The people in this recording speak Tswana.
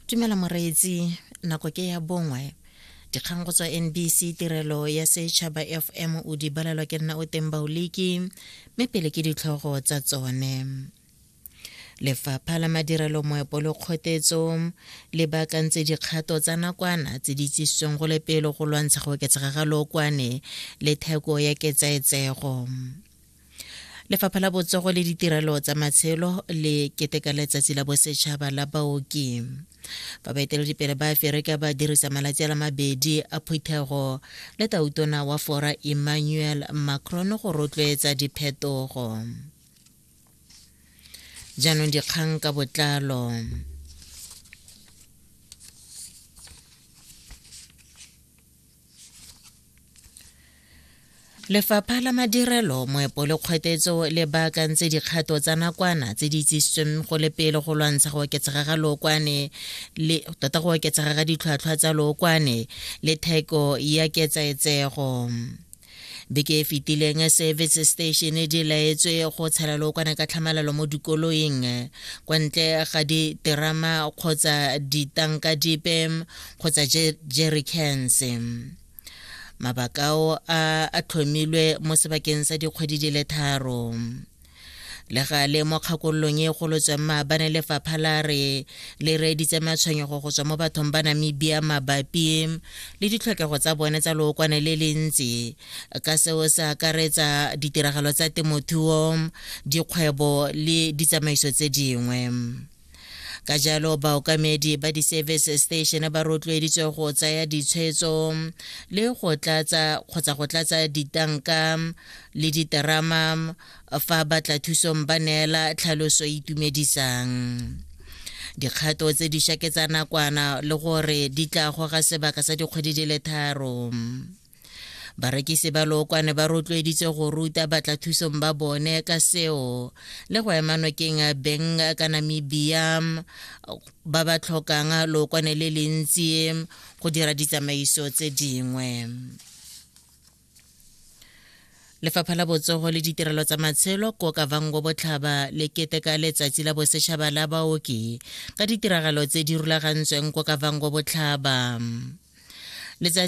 dumela moreetsi nako ke ya bongwe dikgang go tswa nbc tirelo ya setšhaba fm o di balelwa ke nna o teng baoliki mme pele ke ditlhogo tsa tsone lefapha la madirelo moepo le kgotetso le baakantse dikgato tsa nakwana tse di tsisitsweng go le pele go lwantsha go oketsega ga lookwane le theko ya ketsaetsego lefapha la botsogo le ditirelo tsa matshelo le keteka letsatsi la bosetšhaba la baoki fa baeteledipele ba aferika ba dirisa malatsi a la mabedi a phuthego le tautona wa fora emmanuel macron go rotloetsa diphetogo jaanong dikgang ka botlalo lefapha la madirelo moepo le kgwetetso le baakantse dikgato tsa nakwana tse di itsisitsweng go le pele go lwantsha go oketsega ga lookwane le tota go oketsega ga ditlhwatlhwa tsa lookwane le theko ya ketsaetsego beke e fetileng service station di laetswe go tshela lookwane ka tlhamalalo mo dikoloing kwa ntle ga diterama kgotsa ditanka dipe kgotsa jericans mabakao a a tlhomilwe mo sebakeng sa dikgwedi di le tharo le ga le mo kgakololong e golotsweng maabane lefapha la re le reeditse matshwenyego go tswa mo bathong ba namibia mabapi le ditlhokego tsa bone tsa lookwane le le ntsi ka seo se akaretsa ditiragalo tsa temothuo dikgwebo le ditsamaiso tse dingwe ka jalo baokamedi ba di-service station ba rotloeditswe go tsaya ditshwetso le go tlatsa kgotsa go tlatsa ditanka le diterama fa batla thusong ba neela tlhaloso e itumedisang dikgato tse di shaketsa nakwana le gore di tla goga sebaka sa dikgwedi di le tharo barekisi ba lookwane ba rotloeditse go ruta batlathusong ba bone ka seo le go ema nokeng beng ka namibia ba ba tlhokang lookwane le le ntsi go dira ditsamaiso tse dingwe lefapha la botsogo le ditirelo tsa matshelo ko kavango botlhaba le keteka letsatsi la bosetšhaba la baoki ka ditiragalo tse di rulagantsweng ko kavango botlhaba letsatsi